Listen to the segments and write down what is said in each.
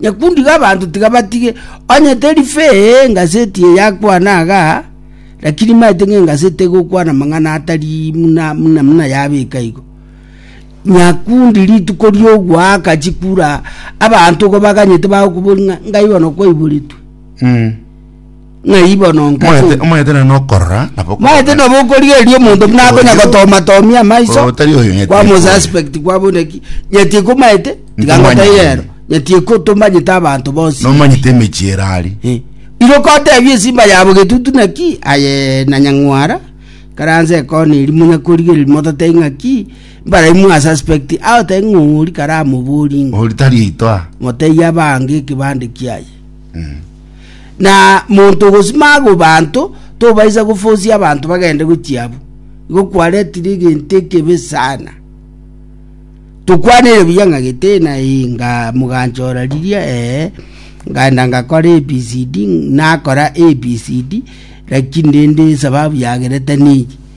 Nyakundi g'abanto tiga batige, onye teri fee engaseti eye akwana iga, lakini maete ng'a engaseti egokwana amang'ana atari muna muna muna yabeka igo. Nyakundi rituko riogoaka chikura abanto igo baganyete bagokobori ng'a ngaibono kwaiboretwe. Mm. Ng'ai bono Moete, nkasomie? moete na nokorora nabo okoboko. maete nabo okorigereria omonto buna akonya Oyo- gotomatomia amaiso Oyo tari oyo nyetie kwamo kwao. suspect kwabo neki nyetie ko maete tiga Ntomanye ngoteire ere. ero nyetie ko tomanyete abanto bonsi nomanyete emechie ere ari Eh. iro kotebia esimba yabo getutu naki aye na nyang'wara karanse ekona eri monya korigereria motatei ng'aki mbare mwa suspect agotebi ng'a ori karamoborie ng'a ori tari yaito a motei abange ekebande kiaye Na monto ogosima agwo banto, tobaisa gofosia abanto bagende gochia abwo. Igo kwaretire egento ekebe sana. Tokwaneire buya ng'a gete na eh, nga moganchora riria eh, ngaenda ngakora ABCD, nakora ABCD, lakini rende esababu yagerete neye.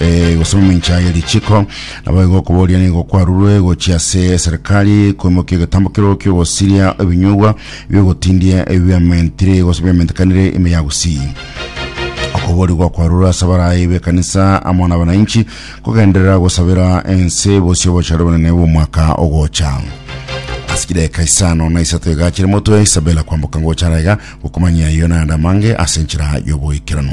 eh, gose mamincha ye richiko nabo igo okoboria nigo kwarurwe gochia ase serikali koimokia egetambo kero kiogosiria ebinyugwa biogotindie ebiamentire gose biamentekanire ime ya gusii okuborigwa kwarura ase abarayi b'ekanisa amo na abananchi kogenderera gosabera ense bosie obochare bonene bw'omwaka ogocha ase chidaeka isano na isato iga chire motwe isabela kwamboka ngochara iga gokomanyia iyo naende amange ase enchera y'oboikeranu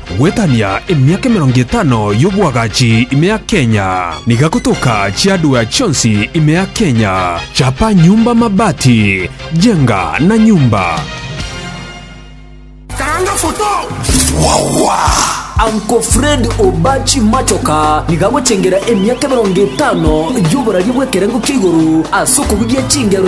Gwetania emiaka emerongo etano y'oboagachi ime ya Kenya. Niga gotoka chiadwea chionsi ime ya Kenya. Chapa nyumba mabati, jenga na nyumba. Karanga foto. Uncle Fred Obachi Machoka nigo agochengera emiaka emerongo etano y'oboraria bw'ekerengo kia igoro ase okobugia chingero